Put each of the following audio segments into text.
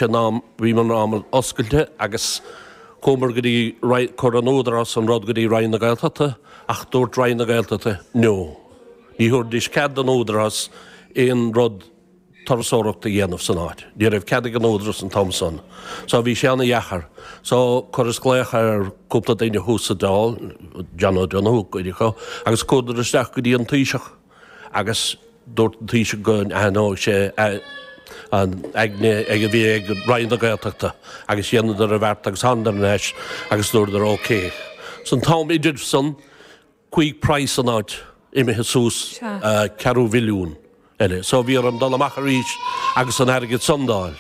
an am, bhí an am oscailte agus chuamar go dtí roinn, chuir an Údarás an rud go dtí Roinn na Gaeltachta ach dúirt Roinn na Gaeltachta no. Ní thabharfaidís cead don Údarás aon rud turasóireacht a dhéanamh san áit. Ní raibh cead ag an Údarás an t-am san. So bhí sé an-dheacair. So chuireas glaoch ar cúpla duine thuas sa Dáil, John O'Donoghue, cuid acu, agus chuadar isteach go dtí an Taoiseach. agus dúirt an Taoiseach go n-athródh sé an aigne a bhí ag Roinn na Gaeltachta agus dheineadar an bheart agus thánadar ar ais agus dúradar OK. San t-am idir san chuaigh praghas an áit imithe suas ceathrú mhilliún eile. So bhí orm dul amach arís agus an airgead san d'fháil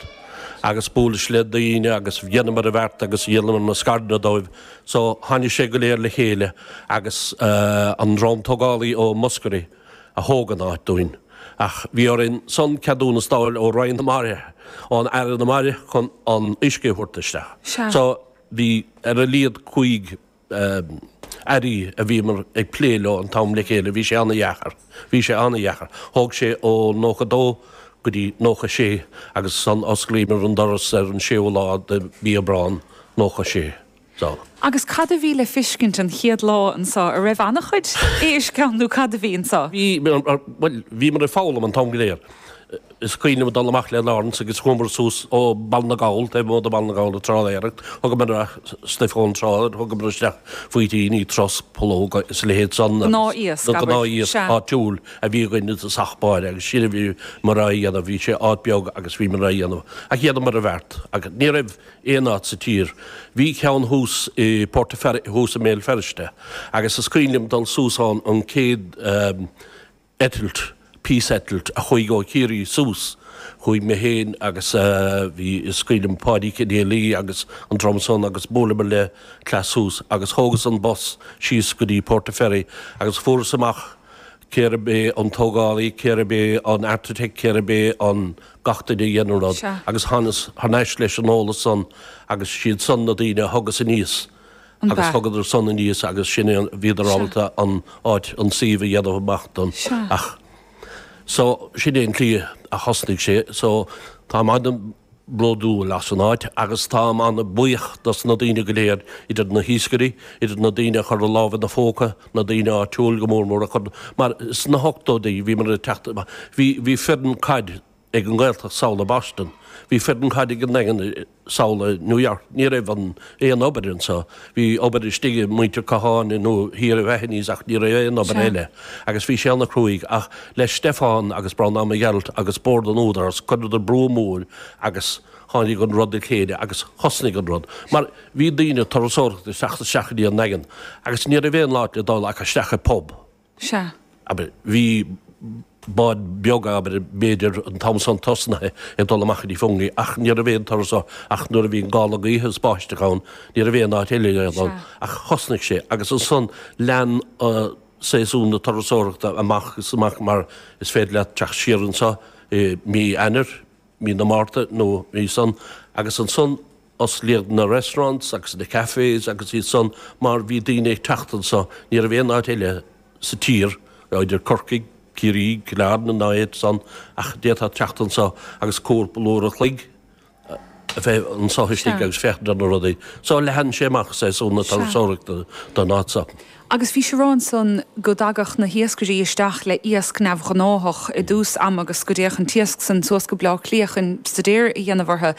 agus buaileas le daoine agus dheineamar an bheart agus dhíolamar na scaireanna dóibh. So, tháinig sé go léir le chéile agus an dream tógálaí ó Mhúscraí a thóg an áit dúinn. Ach bhí orainn ansan ceadúnas d'fháil ó Roinn na Mara, ón Aire na Mara chun an uisce a thabhairt isteach. So, bhí ar a laghad cúig Airí a bhíomar ag plé leo an t-am le chéile, bhí sé an-dheacair. Bhí sé an-dheacair. Thóg sé ó 92 go dtí 96 agus ansan d'osclaíomar an doras ar an séú lá de Mhí Aibreán 96. So. Agus cad a bhí le fiscint an chéad lá anseo? A raibh an-chuid éisc ann nó cad a bhí anseo? Bhí, bhuel, bhíomar ag foghlaim an t-am go léir. Is cuimhin liom dul amach le Laurence agus chuamar suas ó Bhaile na nGall, taobh amuigh de Bhaile na nGall, ag trálaeireacht. Thugamar stuif ón trá, thugamar isteach faoitíní, trosc, pollóga is a leithéid san agus Gnáth-iasc, abair. gnáth-iasc Sea. áitiúil a bhí againn i dtosach báire agus sin a bhíomar á dhéanamh. Bhí sé áit beag agus bhíomar á dhéanamh ach dheineamar an bheart agus ní raibh aon áit sa tír. Bhí ceann thuas i Port a' Fer- thuas i mBéal Feirste agus is cuimhin liom dul suas ann an chéad eh, eitilt, píseitilt, a chuaigh ó Chiarraí suas. Chuaigh mé féin agus bhí scaoileadh le Páidí Kennelly agus an dream san agus buaileamar le cleas suas agus thógas an bus síos go dtí Portaferry agus fuaireas amach cérbh é an tógálaí, cérbh é an architect, cérbh é an gach duine a dhein an rud Sea. agus thánas thar n-ais leis an eolas san agus siad san na daoine a thugas aníos. agus thugadar san aníos agus sin é an, bhíodar ábalta an áit, an suíomh a dhéanamh amach dom, ach so sin é an tslí a thosnaigh sé so táim an-bhródúil as an áit agus táim an-bhuíoch dos na daoine go léir, idir na hiascairí, idir na daoine a chuir a lámh ina phóca, na daoine áitiúil go mór mór a chuir, mar sna hochtóidí bhíomar ag teacht, bhí foireann caid, ag an nGaeltacht thall i Boston, bhí foireann caide ag an nDaingean thall i New York, ní raibh an aon obair anseo, bhí obair istigh ag muintir Catháin nó thiar i Mahony's ach ní raibh aon obair eile agus bhí sé ana chruaidh ach le Stefan agus Breandán Mac Gearailt agus Bord an Údarás cuireadar brú mór agus tháinig an rud le chéile agus thosnaigh an rud mar bhí daoine turasóireachta ag teacht isteach go dtí an nDaingean agus ní raibh aon áit le dul ach isteach i bpub. Sea. Abair, bhí bád beag, abair, b'fhéidir an t-am san tosnaithe ag dul amach go dtí Fungi, ach ní raibh aon turas ann, ach nuair a bhí an gála gaoithe is báisteach ann, ní raibh aon áit eile le dul ann, Sea. ach thosnaigh sé, agus ansan lean séasún na turasóireachta amach is amach, mar is féidir leat teacht siar anso i Mí Eanáir, Mí na Márta nó Mí san, agus ansan, Osclaíodh na restaurants agus na cafés agus iad san mar bhí daoine ag teacht anso, ní raibh aon áit eile sa tír, nó idir Corcaigh, Ciarraí, Cill Airne ná aon áit san ach d'fhéadfá teacht anso agus cúpla uair an chloig a bheith anso istigh agus féachaint ar na rudaí. So leathan sé amach séasúr na turasóireachta don áit so. agus bhís ag rá ansan go dtagadh na hiascairí isteach le iasc neamh-ghnáthach i dtús ama agus go dtéadh an t-iasc san suas go Bleá Cliath chun stuidéar a dhéanamh ortha.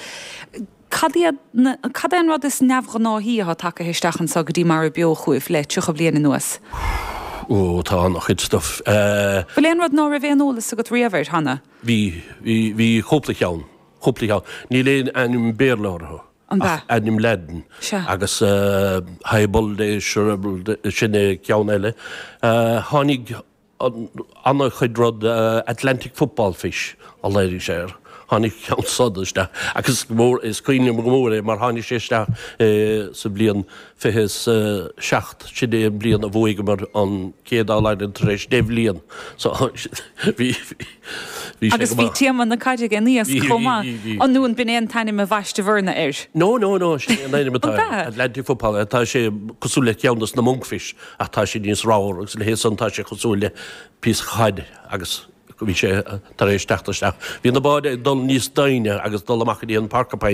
Cad iad na, cad é an rud is neamh-ghnáthaí atá tagtha isteach anso go dtí Mara Beo chugaibh le tríocha bliain anuas? Ó, tá an-chuid stuif. Eh. Bhfuil aon rud ná raibh aon eolas agat riamh air cheana? Bhí, bhí, bhí cúpla cheann, cúpla cheann. Níl aon ainm Béarla orthu. An b'ea? Ach ainm Laidin. Sea. Agus Hyebulde, Shrybulde, sin é ceann eile. Tháinig an-chuid rud, Atlantic football fish a léirigh sé air. Tháinig ceann súd isteach. Agus is cuimhin liom go mór é mar tháinig sé isteach sa bhliain. fiche is a seacht, sin é an bhliain a bhuaigeamar an chéad All-Ireland tar éis deich bhliain. So, bhí, bhí sé Agus go bhí maith. téama na caide ag an iasc chomh maith. Bhí, bhí, bhí. An b'in é an t-ainm a bhaisteabhairse air? No, no, no, sin é an ainm atá An air. b'ea? Atlantic football, eh, tá sé cosúil le ceann dos na monkfish ach tá sé níos ramhar agus le hé san tá sé cosúil le píosa caide agus bhí sé tar éis teacht isteach. Bhí na báid ag dul níos doimhne agus dul amach go dtí an Porcupine.